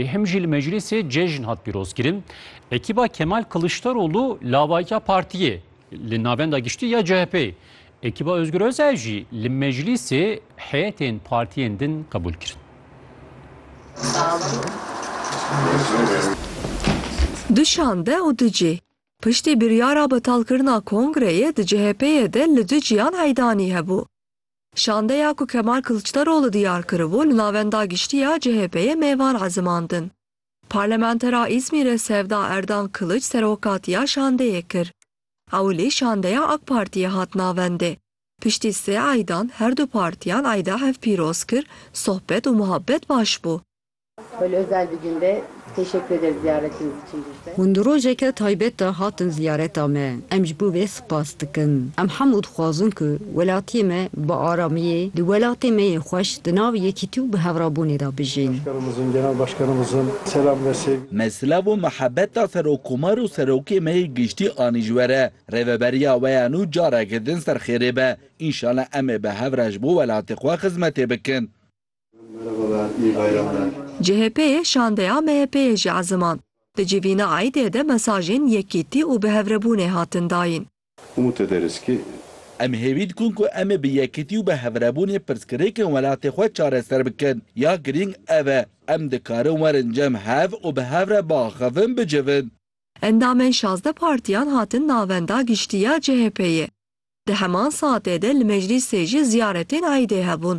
Ê him jî li meclîsê cejn hat pîrozkirin. Ekîba Kemal Kiliçdaroglu lavayiya partiyê li Navenda Giştî ya CHP'ê, ekîba Ozgur Özel jî li meclîsê heyetên partiyên din qebûl kirin. Du şande û du cih. Piştî biryara betalkirina kongreyê di CHP'ê de li du cihan heydanî hebû. Şandeya ku Kemal Kiliçdaroglu diyar kiribû li navenda giştî ya CHP'ê mêvan ezimandin. Parlementera Îzmîrê Sevda Erdan Kiliç serokatiya şandeyê kir. Ewilî şandeya AK Partiyê hat navendê. Piştî sê eydan her du partiyan eyda hevpîroz kir, sohbet û muhabbet baş bû. Hûn di rojeke taybet de hatin ziyareta me. Em ji bo vê spas dikin. Em hemû dixwazin ku welatiyê me bi aramiyê di welatê me yê xweş di nav yekîtî û bihevrabûnê de bijîn. Me silav û mihebeta Serokkomar û Serokê me yê Giştî anî ji we re. Rêveberiya we ya nû careke din serxêrê be. Înşala em ê bi hev re ji bo welatê xwe xizmetê bikin. CHP'ê şandeya MHP'ê jî ezimand. Di civîna Eidê de mesajên yekîtî û bihevrebûnê hatin dayîn. Em hêvî dikin ku em ê bi yekîtî û bihevrebûnê pirsgirêkên welatê xwe çareser bikin. Ya girîng ev e, em dikarin werin cem hev û bi hev re biaxivin, bicivin. Endamên şazdeh partiyan hatin Navenda Giştî ya CHP'ê. Di heman saetê de li meclîsê jî ziyaretên Eidê hebûn.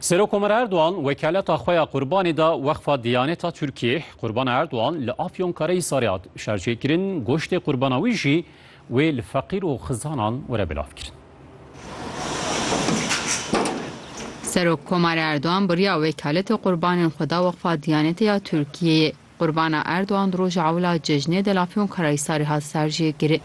Serok Omer Erdogan wekaleta xwe ya qurbanê da Weqfa Diyaneta Tirkiyê. Qurban Erdogan li Afyonkarahisarê hat şerjêkirin, goştê qurbana wî jî wê li feqîr û xizanan were belavkirin. Serok Komarê Erdogan biriya wekaletê qurbanên xwe da Weqfa Diyanete ya Tirkiyeyê. Qurbana Erdogan di roja ewla cejnê de li Afyonkarahisarê hat serjêkirin.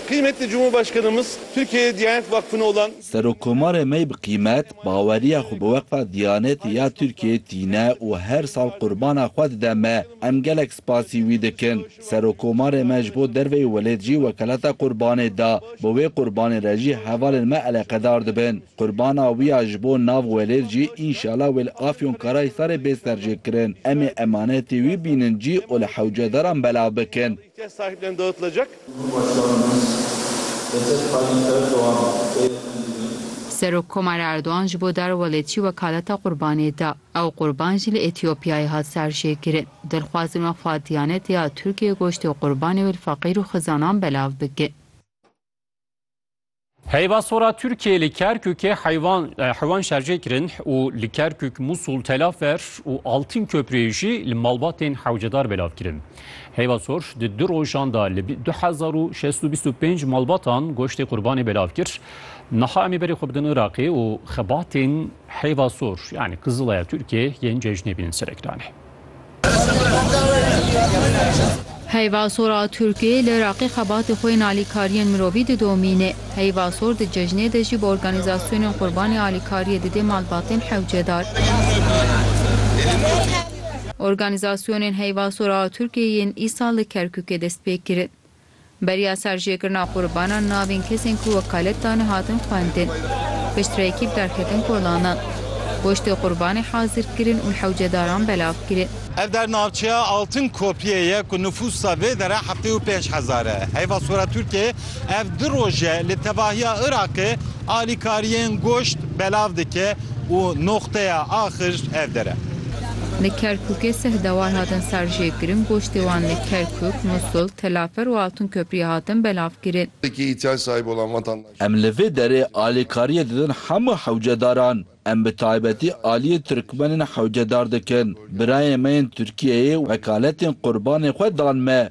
Kıymetli Cumhurbaşkanımız Türkiye'ye Diyanet Vakfı'na olan. Serokomarê mey bi qîmet, baweriya xwe bi Weqfa Diyanetê ya Tirkiyeyê tîne û her sal qurbana xwe dide me. Em gelek spasî wî dikin. Serokomarê me ji bo derveyî welêt jî wekelata qurbanê da. Bi wê qurbanê re jî hevalên me eleqedar dibin. Qurbana wî ya ji bo nav welêr jî înşala wê li Afyonkarahisarê bê serjêkirin. Em ê emanetê wî bînin cî û li hewcedaran belav bikin. Serokkomar Erdogan ji bo darwelêtjî wekaleta Qurbanê da. Ew Qurban jî li Etîopyayê hat serjêkirin. Dilxwazin weqfa Diyanetê ya Tirkiyeyê goştê Qurbanê wê li feqîr û xizanan belav bikin. Heyva sora Tirkiyê li Kerkûkê heyvan heywan şerjê kirin û li Kerkûk, Musul, Telafer û Altîn Köprûyê jî li malbatên hewcedar belav kirin. Heyva sor di du rojan de li du hezar û şeş û bîst û pênc malbatan goştê qurbanê belav kir. Niha em ê berê xwe bidin Iraqê û xebatên heyva sor yanî Kizilaya Tirkiyê yên cejnê bînin serekdanê. Heyva sora Tirkiyê li Iraqê xebatê xwe yên alîkariyên mirovî didomîne. Heyva sor di cejnê de jî bi organîzasyonên qurbanê alîkariyê didê malbatên hewcedar. Organîzasyonên heyva sora Tirkiyê yên îsal li Kerkûkê dest pê kirin. Beriya serjêkirina qurbanan navên kesên ku wekalet dane hatin xwendin. Piştre ekîp derketin kolanan. Goştê qurbanê hazir kirin û hewcedaran belav kirin. Ev der navçeya Altın Köprüye ye ku nifûsa vê dere heftê û pênc hezar e. Heyva Sora Tirkiyeyê ev du roj e li tevahiya Iraqê Alîkariyên goşt belav dike û noxteya axir ev dere. Li Kerkûkê sih dewar hatin serjêkirin, goştê wan li Kerkûk, Musul, Telafer û Altûnkepriyê hatin belavkirin. Em li vê derê alîkariyê didin hemû hewcedaran. Em bi taybetî aliyê Tirkmenên hewcedar dikin. Birayên me yên Tirkiyeyê wekaletên qurbanên xwe dan me.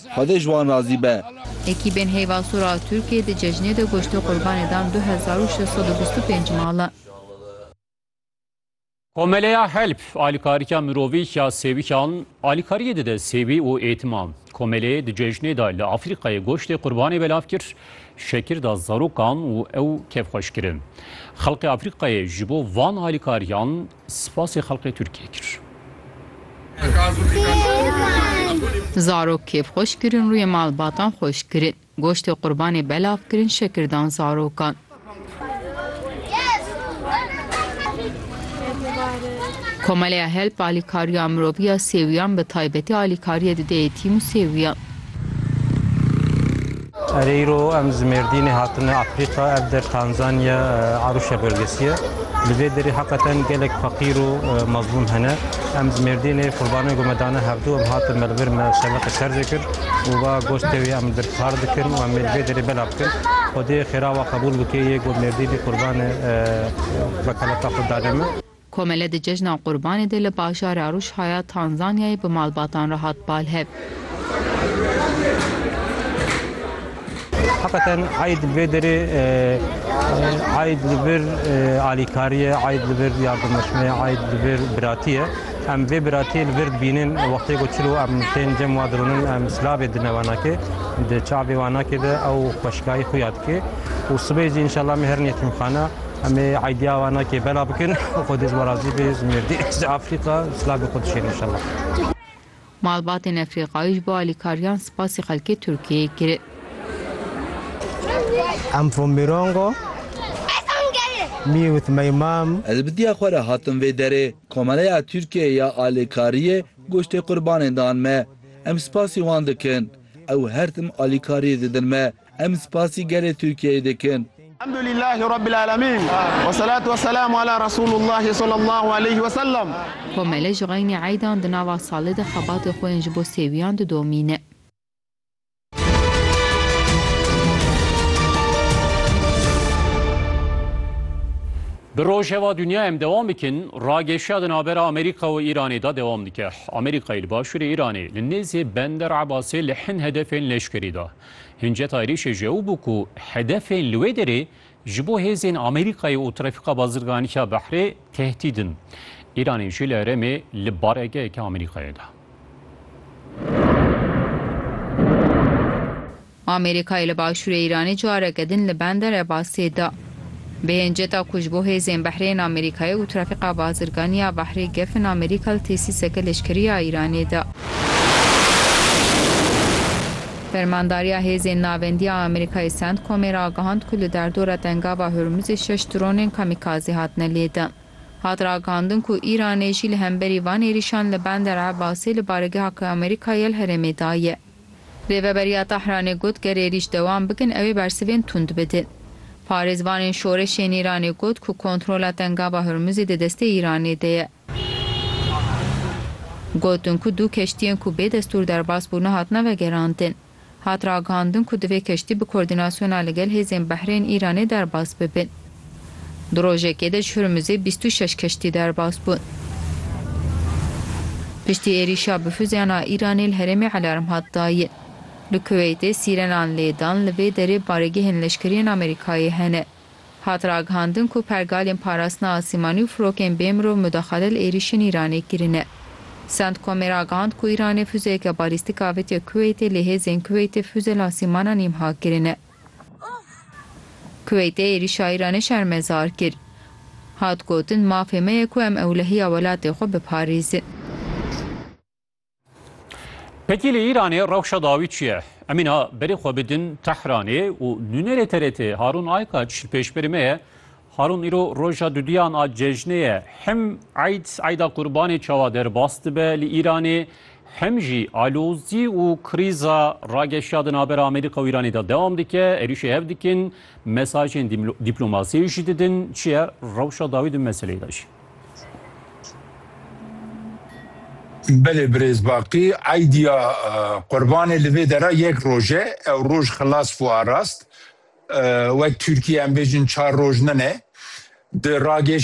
Xwedê ji wan razî be. Ekîbên Heyva Sor a Tirkiyê di cejnê de goştê qurbanê dan du hezar û şeş sed û bîst û pênc mala. Komeleya Help alîkarîka mirovî ya sêwîkan alîkariyê dide sêwî û êtiman. Komeleyê di cejnê de li Afrîkayê goştê qurbanê belav kir, şekir da zarokan û ew kevxweş kirin. Xelkê Afrîkayê ji bo van alîkariyan Spasê xelqê Tirkiyê kir. Zarok kêf xweş kirin rûyê malbatan xweş kirin. Goştê qurbanê belav kirin şekir dan zarokan. Komeleya HELP alîkariya mirovî ya sêwiyan bi taybetî alîkariyê dide yetîm û sêwiyan. Erê îro em ji Mêrdînê hatine Efrîqa, ev der Tanzanya, Arusha bölgesi ye. Li vê derê heqeten gelek feqîr û mezlûm hene. Em ji Mêrdînê qurbanên ku me dane hevdû em hatin me li vir me şeveqê şerjê kir û va goştê wî em li vir kar dikin û em ê li vê derê belav bikin. Xwedê xêra wan qebûl bike yê ku Mêrdînê qurbanê vekelata xwe danê me. Komele di cejna Qurbanê de li bajara Rûşha ya Tanzanyayê bi malbatan re hat balhev. Heqeten eyd li vê derê eyd li vir alîkarî ye, eyd li vir yardimeşme ye, eyd li vir biratî ye. Em vê biratî li vir dibînin wextê ku çil û em tên cem wa dironin em silavê dine wanakê di çavê wanakê de ew xweşikayî xwe ya dike û sibê jî înşallah me herin yetîmxana Em ê idea wan nakê bela bikin û xwedê ji we razî bê ji mêrdî, ji Efrîqa silavê xwe dişêne inşallah. Malbatên Efrîqayî ji bo alîkariyan spasî xelkê Tirkiyeyê kirin. Em Fombirongo, mi with my mom. Ez bi diya xwe re hatim vê derê. Komeleya Tirkiyeyê ya alîkariyê goştê qurbanên dan me. Em spasî wan dikin. Ew her tim alîkariyê didin me. Em spasî gelê Tirkiyeyê dikin. Elhamdulîllahî Rabbil Alemîn. Wesselatu wesselamu ala Resûlûllahî sallallahu aleyhî ve sellem. Komele ji xeynî eydan di nava salê de xebatê xwe yên ji bo sêwiyan didomîne. Bi rojeva dinya em dewam bikin, ragêşiya di navbera Amerîka û Îranê de dewam dike. Amerîkayê li başûrê Îranê li nêzê Bender Ebasê li hin hedefên leşkerî da. Hinceta êrîşê ji ew bû ku hedefên li wê derê ji bo hêzên Amerîkayê û Trefîka Bazirganî ya Behrê tehdîd in. Îranê jî li herêmê li baregeheke Amerîkayê da. Amerîkayê li başûrê Îranê careke din li bende Rebasê da. Bi hinceta ku ji bo hêzên behrên Amerîkayê û trafîqa bazirganî ya behrê gefin Amerîka li tesîseke leşkerî ya Îranê de. Fermandariya hêzên navendî ya Amerîkayê Centcomê ragihand ku li derdora Dengava Hurmuzê şeş dronên kamîkazî hatine lêdin. Hat ragihandin ku Îranê jî li hemberî van êrîşan li Bender Ebasê li baregeha ku Amerîka ye li herêmê daye. Rêveberiya Tehranê got ger êrîş dewam bikin ew ê bersivên tund bidin. Parêzvanên şoreşê ên Îranê got ku kontrola Tengava Hurmuzê di destê Îranê de ye. Gotin ku du keştiyên ku bê destûr derbas bûne hatine vegerandin. Hat ragihandin ku divê keştî bi kordînasyona li gel hêzên behrê ên Îranê derbas bibin. Di rojekê de ji Hurmuzê bîst û şeş keştî derbas bûn. Piştî êrîşa bi fuzeyan a Îranê li herêmê alarm hat dayin. Li Kuweytê sîrenan lê dan li vê derê baregehên leşkeriyên Amerîkayê hene. Hat ragihandin ku pergalên parastina asîmanî û firokên bê mirov mudaxale li êrîşên Îranê kirine. Centcomê ragihand ku Îranê fuzeyeke balîstîk avitiye Kuweytê lê hêzên Kuweytê fuze li asîmanan îmha kirine. Kuweytê êrîş a Îranê şermezar kir. Hat gotin, Mafê me ye ku em ewlehiya welatê xwe biparêzin. Pekî li Îranê rewşa dawî çi ye? Em îna berê xwe bidin Tehranê û nûnerê TRT'ê Harûn Aykaç li pêşberî me ye. Harûn îro roja dudiyan a cejnê ye. Him Eid, Eida Qurbanê çawa derbas dibe li Îranê, him jî alozî û krîza rageşa di navbera Amerîka û Îranê de dewam dike. Êrîşê hev dikin, mesajên dîplomasiyê jî didin. Çi ye rewşa dawî di meseleyê de jî? Belê birêz Baqî, Eidiya Qurbanê li vê dera yek roj e. Ew roj xilas bû a rast. Wek Tirkiye em bêjin çar roj ne ne. Di